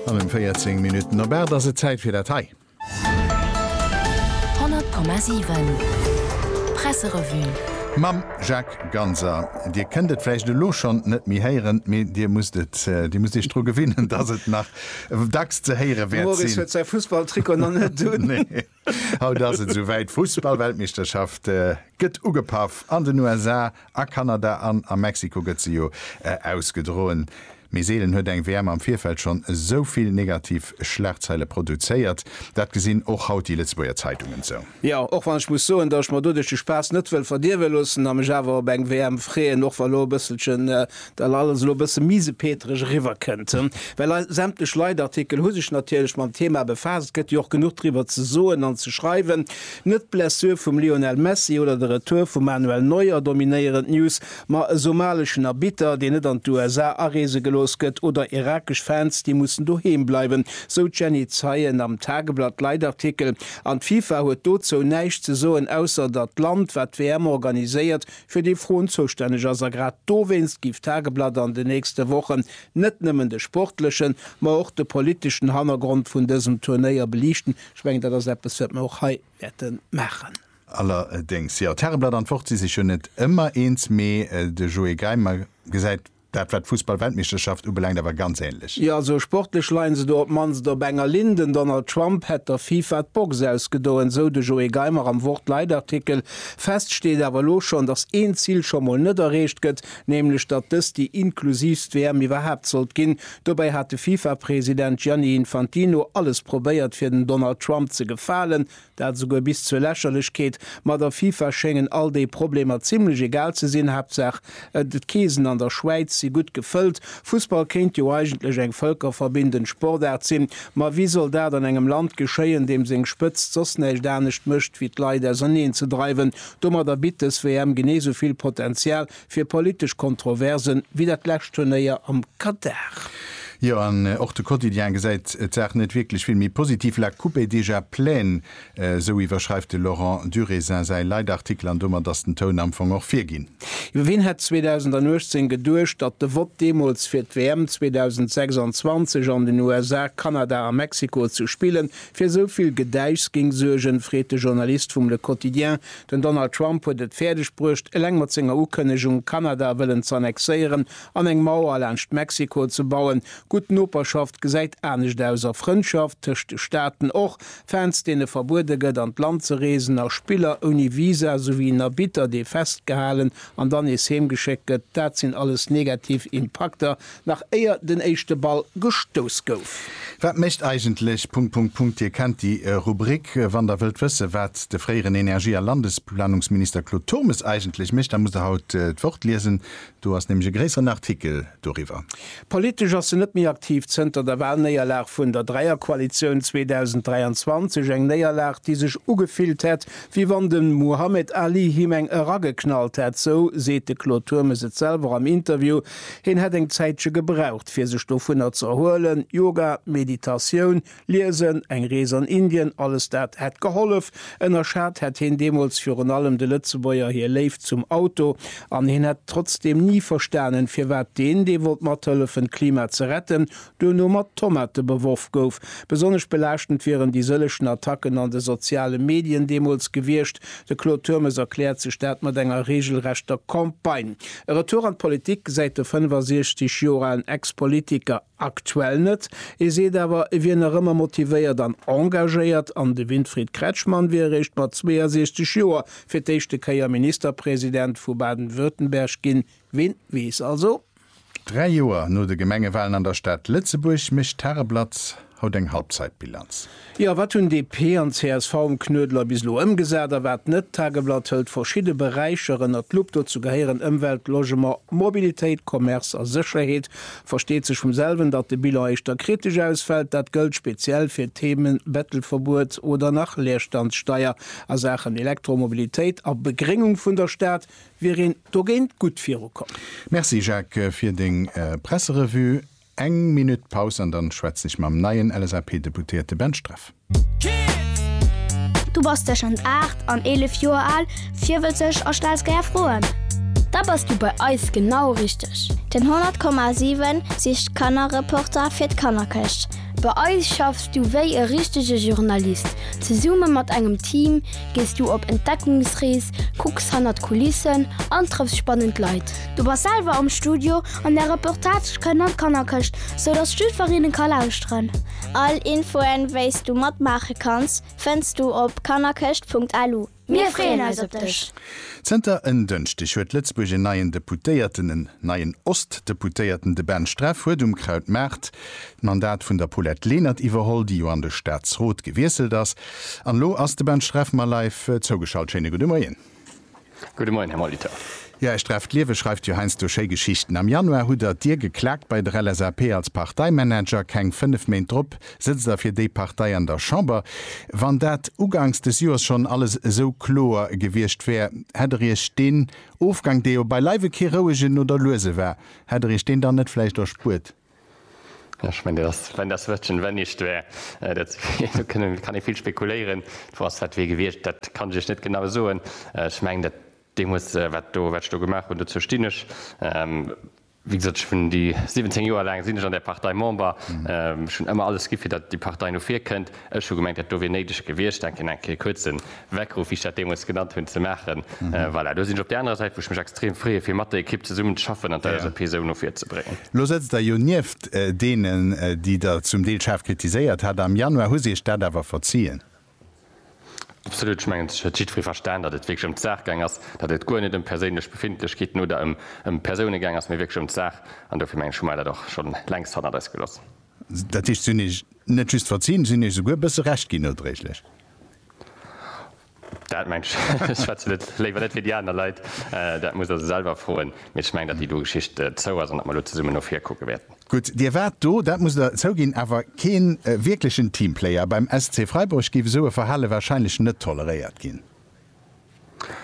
An em 14 Minutten op 8 ass et Zäit fir dat hei. 100,7 Presserevue. Mam Jacques Ganser. Dir kënnt et vläicht elo schonn net méi héieren, mee Dir musst et, Dir musst Iech dru gewinnen, dass et nach dacks ze héiere wäert sinn. D'Maurice huet säi Fussballtrikot nach net un. Haut ass et souwäit, Fussballweltmeeschterschaft gëtt ugepaff an den USA, a Kanada an a Mexiko gëtt se jo ausgedroen. Mee seelen huet eng WM am Virfeld schonn esou vill negativ Schlagzeile produzéiert. Dat gesinn och haut déi Lëtzebuerger Zeitungen esou. Jo, och wann ech muss soen, datt ech mer doduerch de Spaass net wëll verdierwe loossen a mech awer op eng WM freeën, och wa lo e bësselchen Well alles elo e bësse misepetereg eriwwer kënnt, well eis sämtlech Leitartikel hu sech natierlech mam Thema befaasst, gëtt jo och genuch driwwer ze soen an ze schreiwen. Net d'Blessure vum Lionel Messi oder de Retour vum Manuel Neuer dominéieren d'News, ma e somaleschen Arbitter, deen net an d'USA areese gelooss gëtt, oder irakesch Fans, déi mussen doheem bleiwen, sou d'Jenny Zeien am Tageblatt-Leitartikel. An d'FIFA huet dozou näischt ze soen, ausser datt d'Land, wat d'WM organiséiert, fir déi Froen zoustänneg ass. A grad dowéinst géif d'Tageblatt an den nächste Wochen net nëmmen de sportlechen, ma och de politeschen Hannergrond vun dësem Turnéier beliichten. Ech mengen, dat ass eppes, wat mir och hei wäerte maachen. Allerdéngs, jo, d'Tageblatt an d'Wort si sech jo net ëmmer eens, mee de Joé Geimer gesäit Dat war d'Fussballweltmeeschterschaft ubelaangt awer ganz ähnlech. Jo, also sportlech leien se do op d'mannst op enger Linn. Den Donald Trump hätt der FIFA d'Box ausgedoen, esou de Joé Geimer am Wort-Leitartikel. Fest steet awer elo schonn, datt een Zil scho mol net erreecht gëtt, nämlech datt dëst déi inklusiivst WM iwwerhaapt sollt ginn. Dobäi hat de FIFA-President Gianni Infantino alles probéiert, fir dem Donald Trump ze gefalen. Dat esouguer bis zur Lächerlechkeet. Ma der FIFA schéngen all déi Problemer zimmlech egal ze sinn, Haaptsaach d'Keesen an der Schwäiz si gutt gefëllt. Fussball kéint jo eigentlech eng vëlkerverbindend Sportaart sinn, ma wéi soll dat an engem Land geschéien, deem seng Spëtzt soss näischt anescht mécht wéi d'Leit auserneenzedreiwen? Domadder bitt dës WM genee esou vill Potenzial Fir politesch Kontroversen wéi dat lescht Turnéier am Katar. Jo, an och de Quotidien gesäit d'Saach net wierklech vill méi positiv, La coupe est déjà pleine, esou iwwerschreift de Laurent Durésin säi Leitartikel an domat ass den Toun am Fong och virginn. Jo, wien hätt 2018 geduecht, datt de Vott deemools fir d'WM 2026 an den USA, Kanada a Mexiko ze spillen, fir esou vill Gedäischs géing suergen, freet de Journalist vum Le Quotidien Den Donald Trump huet et fäerdeg bruecht, eleng mat senger Ukënnegung, Kanada wëllen ze annexéieren an eng Mauer laanscht Mexiko ze bauen. Gutt Noperschaft gesäit anescht aus, a Frëndschaft tëscht de Staaten och. Fans, deene verbuede gëtt, an d'Land ze reesen, a Spiller ouni Visa, souwéi en Arbitter, dee festgehalen an dann nees heemgeschéckt gëtt, dat sinn alles negativ Impakter, Nach éier den éischte Ball gestouss gouf. Wat mécht eigentlech... Punkt, Punkt, Punkt Dir kennt déi Rubrik. Wann der wëllt wësse wat de fréieren Energie a Landesplanungsminister Claude Turmes eigentlech mécht, da musst der haut d'Wort liesen. Do ass nämlech e gréisseren Artikel doriwwer. Politesch ass se net méi aktiv zënter der Walnéierlag vun der Dräierkoalitioun 2023. Eng Néierlag déi sech ugefillt hätt wéi wann de Muhammed Ali him eng erageknallt hätt, sou seet de Claude Turmes et selwer am Interview Hien hätt eng Zäitche gebraucht, fir sech dovunner ze erhuelen. Yoga, Meditatioun, Liesen, eng Rees an Indien, alles dat hätt gehollef. Ënnerschat hätt hien deemools virun allem de Lëtzebuerger hir Léift zum Auto. An hien hätt trotzdeem ni verstanen, firwat deen, dee wollt mathëllefen, d'Klima ze retten, Duerno mat Tomate beworf gouf. Besonnesch belaaschtend wieren déi sëllechen Attacken an de soziale Medien deemools gewiescht. De Claude Turmes erkläert sech dat mat enger reegelrechter Campagne. E Retour an d'Politik gesäit de 65 Joer alen Ex-Politiker aktuell net. E seet awer, e wier nach ëmmer motivéiert an engagéiert an de Winfried Kretschmann wier eréischt mat 62 Joer fir d'éischte Kéier Ministerpresident vu Baden-Württemberg ginn. Ween weess also? Dräi Joer no de Gemengewalen an der Stad Lëtzebuerg mécht d'Tageblatt haut eng Halbzeitbilanz. Jo, wat hunn DP an csv um Knuedler bis elo ëmgesat a wat net? D'Tageblatt hëlt verschidde Beräicher ënnert d'Lupp. Dozou gehéieren Ëmwelt, Logement, Mobilitéit, Commerce a Sécherheet. Versteet sech vum selwen, datt de Bilan éischter kritesch ausfält. Dat gëllt speziell fir d'Themen Bettelverbuet oder nach Leerstandssteier. A Saachen Elektromobilitéit a Begréngung vun der Stad wier een dogéint gutt virukomm. Merci Jacques fir deng Presserevue. Eng Minutt Paus an dann schwätzen ech mam neien LSAP-Deputéierte Ben Streff. Du bass tëschent 8 an 11 Joer al, virwëtzeg a stells gär Froen? Da bass du bei eis genau richteg! Den 100,7 sicht d'Kannerreporter fir d'Kannerkëscht. Bei eis schaffs du wéi e richtege Journalist, zesumme mat engem Team, Gees du op Entdeckungsrees, kucks hannert d'Kulissen an trëffs spannend Leit. Du bass selwer am Studio an där Reportage kënnt an d'Kannerkëscht, sou dass d'Stüferinnen ka lauschteren. All Infoen, wéis du matmaache kanns, fënns du op kannerkëscht.lu. Mir freeën eis op dech! Zënter en Dënschdeg huet Lëtzebuerg en neien Deputéierten. En neien Ost-Deputéierten, de Ben Streff, huet um Krautmaart d'Mandat vun der Paulette Lenert iwwerholl, déi jo an de Staatsrot gewiesselt ass. An elo ass de Ben Streff mer live zougeschalt. Schéine gudde Moien. Gudde Moien, Här Molitor. Jo, Här Streff, d'Liewe schreift jo heiansdo schéi Geschichten. Am Januar hutt Der d'Dier geklaakt bei der LSAP als Parteimanager. Keng fënnef Méint drop sëtzt Der fir déi Partei an der Chamber. Wann dat ugangs des Joers schonn alles esou kloer gewiescht wär, hätt Der Iech deen Ofgang, dee jo beileiwe kee rouegen oder luese war, hätt Der Iech deen dann net vläicht erspuert? Ech mengen, dat ass, wenn das Wörtchen wenn nicht wär. Dat kann ee vill spekuléieren. D'Fro ass, wat wier gewiescht? Dat kann ech Iech net genau soen. Ech mengen, dat deemools, wat do, wat ech do gemaach hunn, dozou stinn ech. Wéi gesot, ech hunn déi 17 Joer laang sinn ech an där Partei Member. Ech hunn ëmmer alles gi fir datt déi Partei no vir kënnt. Ech hu gemengt, dat do wier néideg gewiescht, denk een, eng Kéier kuerz en Weckruff, wéi ech dat deemools genannt hunn, ze maachen. Voilà, do sinn ech op där anerer Säit, wou ech mech extrem freeë fir mat der Ekipp zesummen ze schaffen an d'LSAP esou no vir ze bréngen. Lo sëtzt Der jo nieft deenen, déi Der zum Deel schaarf kritiséiert hat. Am Januar hu se Iech dat awer verziien. Absolut. Ech mengen, et huet jiddweree verstan, datt et wierklech ëm d'Saach gaang ass, datt et guer net ëm perséinlech Befindlechkeeten oder ëm Persoune gaang ass, mee wierklech ëm d'Saach. An dofir, mengen ech, hu mer dat och schonn längst hannert eis geloss. Dat heescht, si hunn Iech net just verzinn, si hunn Iech souguer e bësse Recht ginn, nodréiglech. Dat mengen ech. Ech schwätzen et léiwer net fir déi aner Leit. Dat musst Der se selwer froen. Mee ech mengen, datt déi do Geschicht zou ass an datt mer elo zesummen no vir kucke wäerten. Gutt, Dir waart do, dat musst Der zouginn, awer kee wierklechen Teamplayer. Beim SC Freiburg géif esou e Verhale warscheinlech net toleréiert ginn.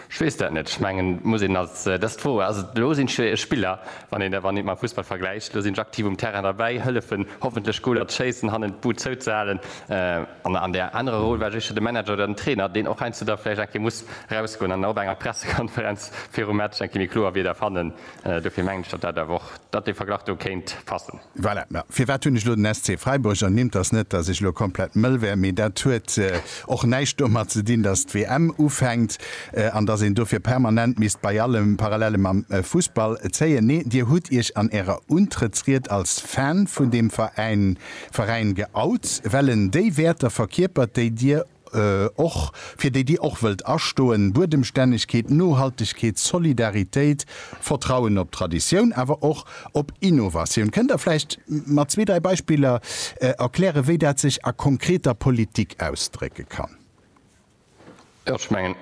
Ech weess dat net. Ech mengen, et muss een als, dat ass d'Fro, also elo sinn d'Spiller, wann een et mam Fussball vergläicht, elo sinn ech aktiv um Terrain derbäi, hëllefen hoffentlech Goler ze schéissen, hannen d'Bud zouzehalen. An an där anerer Roll war ech éischter de Manager oder den Trainer, deen och heiansdo da vläicht eng Kéier muss erausgoen an op enger Pressekonferenz virum Match eng Kéier méi kloer Wierder fannen, Dofir mengen ech, datt dat awer och, datt dee Verglach do kéint passen. Voilà, mä firwat hunn ech elo den SC Freiburg ernimmt? Ass net, datt ech elo komplett mëll wär, mee dat huet och näischt domat ze dinn, datt d'WM ufänkt an datt een dofir permanent misst bei allem Parallele mam Fussball zéien. Nee, Dir hutt Iech an Ärer Untrëttsried als Fan vun deem Veräin geout, well en déi Wäerter verkierpert, déi Dir och fir déi Dir och wëllt astoen, Buedemstännegkeet, Nohaltegkeet, Solidaritéit, Vertrauen op Traditioun, awer och op Innovatioun. Kënnt Der vläicht mat zwee, dräi Beispiller erklären, wéi dat sech a konkreter Politik ausdrécke kann? Ech mengen,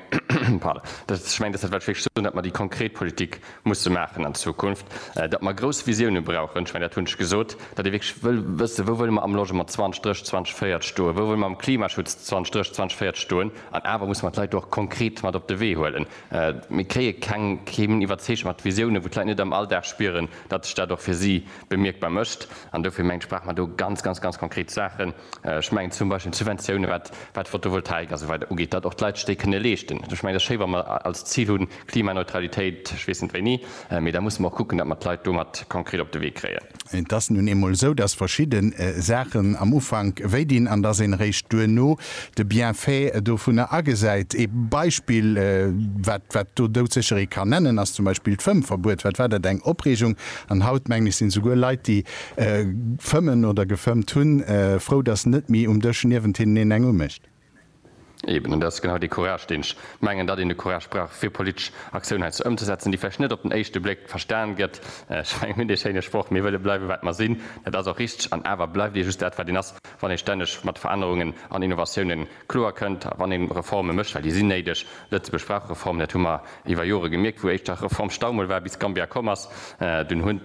dass dat wat ech wéilt soen, datt mer déi konkret Politik Musse maachen an Zukunft, datt mer grouss Visioune brauchen. Ech mengen, dat hunn ech gesot, datt ee wierklech wëll wëssen, wou wëlle mer am Logement 2030, 2040 stoen, wou wëlle mer am Klimaschutz 2030, 2040 stoen. An awer musse mer d'Leit do och konkret mat op de Wee huelen. Mir kréie keng, kee minn iwwerzeegt mat Visiounen, wou d'Leit net am Alldag spieren, datt sech dat och fir si bemierkbar mécht. An dofir mengen ech, brauche mer do ganz, ganz, ganz konkret Saachen. Ech mengen zum Beispill d'Subventioune wat d'Fotovoltaik a sou weider ugeet, datt och d'Leit sech déi kënne leeschten. Ech mengen, et ass schéi wa mer als Zil hunn, Klimaneutralitéit, ech weess net wéini, mee da musse mer och kucken, datt mer d'Leit do mat konkret op de Wee kréien. Et ass nun eemol esou, datt verschidde Saachen am Ufank wéi dinn an datt een eréischt duerno de Bienfait dovunner agesäit. Ee Beispill wat wat do doudsécheree kann nennen ass zum Beispill d'Fëmmverbuet. Wat war dat eng Opreegung an haut mengen ech sinn esouguer Leit déi Fëmmen oder gefëmmt hunn. Frou, dass net méi um Dësch niewent hinnen een eng umécht. Eben, an dat ass genau dee Courage, deen ech mengen, datt een de Courage brauch, fir politesch Aktioun heiansdo ëmzesetzen, déi vläicht net op den éischte Bléck verstan gëtt. Ech mengen, mir hunn dee schéine Sproch, Mir wëlle bleiwe wat mer sinn. Dat ass och richteg. An awer bleift ee just dat, wat een ass, wann ee stänneg mat Verännerungen an Innovatioune kloer kënnt, wann ee Reforme mécht, well déi sinn néideg. Lëtzebuerg brauch Reformen, dat hu mer iwwer Jore gemierkt, wou éischter Reformstau mol war, bis Gambia komm ass. Dunn hunn.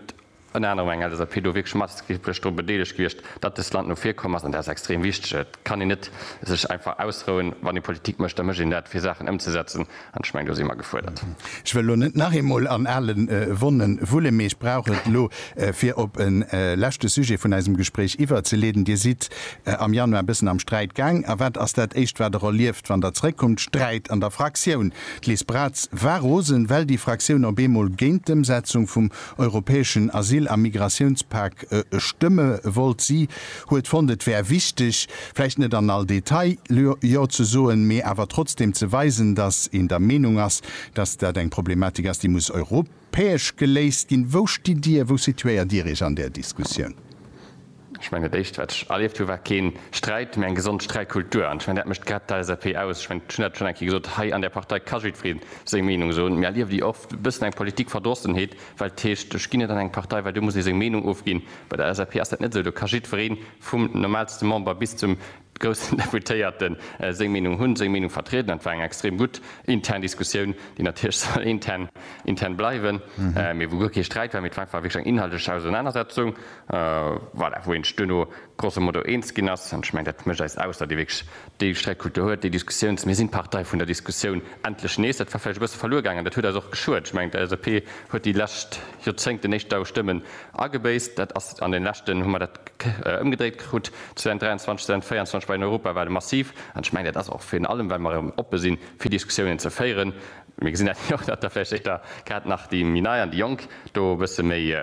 Ënner anerem eng LSAP do wierklech maßgeblech dru bedeelegt gewiescht, datt dëst Land no vir komm ass, an dat ass extrem wichteg. Et kann een net sech einfach ausrouen. Wann ee Politik mécht, da mécht een dat fir Saachen ëmzesetzen, an ech mengen, do si mer gefuerdert. Ech wëll elo net nach eemol an ale Wonnen wullen, mee ech brauch et elo, fir op e leschte Sujet vun eisem Gespréich iwwerzeleeden. Dir sidd am Januar e bëssen am Sträit gaang, a wat ass dat éischt wat Der erlieft, wann Der zrëckkommt? Sträit an der Fraktioun. D'Liz Braz war rosen, well déi Fraktioun op eemol géint d'Ëmsetzung vum europäeschen Asyl a Migratiounspak stëmme wollt. Si huet fonnt, et wär wichteg, vläicht net an all Detail Jo ze soen, mee awer trotzdeem ze weisen, datt een der Meenung ass, datt dat eng Problematik ass, déi muss europäesch geléist ginn. Wou stitt Dir, wou situéiert Dir Iech an där Diskussioun? Ech mengen, dat Éischt, wat ech erlieft hu war keen Sträit, mä eng gesond Sträitkultur. An ech mengen, dat mécht grad d'LSAP aus. Ech mengen, ech hunn dat schonn eng Kéier gesot, hei an där Partei ka jiddweree seng Meenung soen. Mir erliewen déi oft e bëssen eng Politikverdrossenheet, well et heescht, ech ginn net an eng Partei, well do muss ee seng Meenung ofginn. Bei der LSAP ass dat net esou, do ka jiddweree vum normaalste Member bis zum groussen Deputéierten seng Meenung hunn, seng Meenung vertrieden. Dat war eng extrem gutt intern Diskussioun, déi natierlech soll intern intern bleiwen, mee wou guer kee Sträit war, mee et war einfach wierklech eng inhaltlech Ausernanersetzung, voilà, wou een sech duerno grosso modo eens ginn ass. An ech mengen, dat mécht eis aus, datt ee wierklech déi Sträitkultur huet, déi Diskussiouns-, mir sinn d'Partei vun der Diskussioun, endlech nees. Dat war vläicht e bësse verluer gaangen, dat huet eis och geschuet. Ech mengen, d'LSAP huet déi lescht Joerzéngten éischter u Stëmme Agebéisst, dat ass an den leschten, hu mer dat ëmgedréit krut, 2023, 2024 bei den Europawale massiv. An ech mengen, dat ass och virun allem, well mer erëm oppe sinn, fir Diskussiounen ze féieren. Mir gesinn dat jo och, datt da vläicht éischter grad nach déi méi Nei an déi Jonk do e bësse méi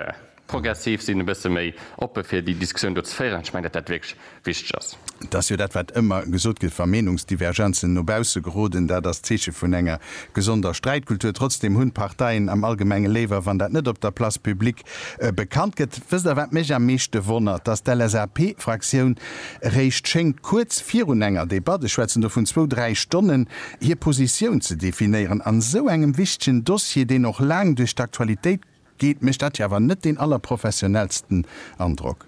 progressiv sinn, e bësse méi oppe fir déi Diskussioun do ze féieren. An ech mengen, datt dat wierklech. wichteg ass. Dat ass jo dat, wat ëmmer gesot gëtt, wa Meenungsdivergenzen no bausse geroden, dat ass d'Zeeche vun enger gesonder Sträitkultur. Trotzdeem hunn d'Parteien am Allgemenge léiwer, wann dat net op der Place publique bekannt gëtt. Wësst Der, wat mech am meeschte wonnert? Dass d'LSAP-Fraktioun eréischt schéngt kuerz virun enger Debatt, ech schwätzen do vun zwou, dräi Stonnen, hir Positioun ze definéieren a sou engem wichtegen Dossier, deen och laang duerch d'Aktualitéit, Geet, mécht dat jo awer net deen allerprofessionellsten Androck.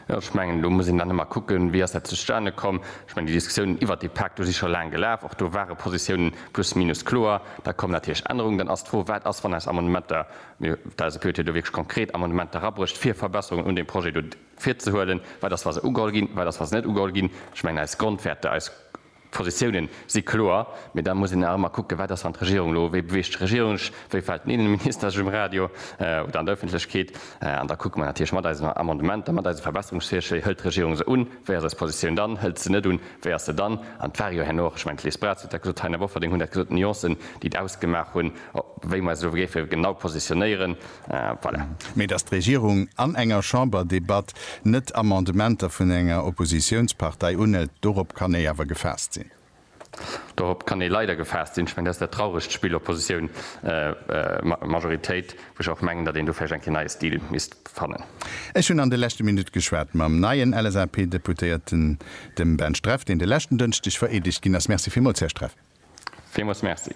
Jo, ech mengen, do muss een dann ëmmer kucken, wéi ass dat zustane komm. Ech mengen, déi Diskussiounen iwwert dee Pak, do si scho laang gelaf. Och do ware Positiounen plus minus kloer. Da kommen natierlech Ännerungen. Dann ass d'Fro, wat ass, wann eis Amendementer, mir d'eise Piotier do wierklech konkret Amendementer erabrécht, fir Verbesserungen un deem Projet do virzehuelen, wat ass, wa se ugeholl ginn, wat ass, wa se net ugeholl ginn. Ech mengen, eis Grondwäerter, eis D'Positiounen si kloer, mee da muss een nach ëmmer kucken, wat ass, wann d'Regierung elo, wéi beweegt sech d'Regierung, wéi fält den Innenminister sech um Radio oder an der Ëffentlechkeet? An da kucke mer natierlech mat eisen Amendementer, mat eise Verbesserungsvirschléi, hëlt d'Regierung se un, wéi ass eis Positioun dann, hëlt se net un, wéi ass se dann? An et war jo herno och, ech mengen d'Liz Braz huet dat gesot, d'Taina Bofferding hunn dat gesot, d'Nuancen déi et ausgemaach hunn, wéi mer eis elo géife genau positionéieren. Voilà. Mee datt d'Regierung an enger Chamberdebatt net Amendementer vun enger Oppositiounspartei unhëlt, dorop kann ee awer gefaasst sinn. Dorop kann ee leider gefaasst sinn. Ech mengen, dat ass dat trauregt Spill Oppositioun, Majoritéit, wou ech och mengen, datt een do vläicht eng Kéier neie Stil misst fannen. Ech hunn an de leschte Minutte geschwat mam neien LSAP-Deputéierten, dem Ben Streff, deen de leschten Dënschdeg vereedegt ginn ass. Merci villmools, Här Streff. Villmools Merci.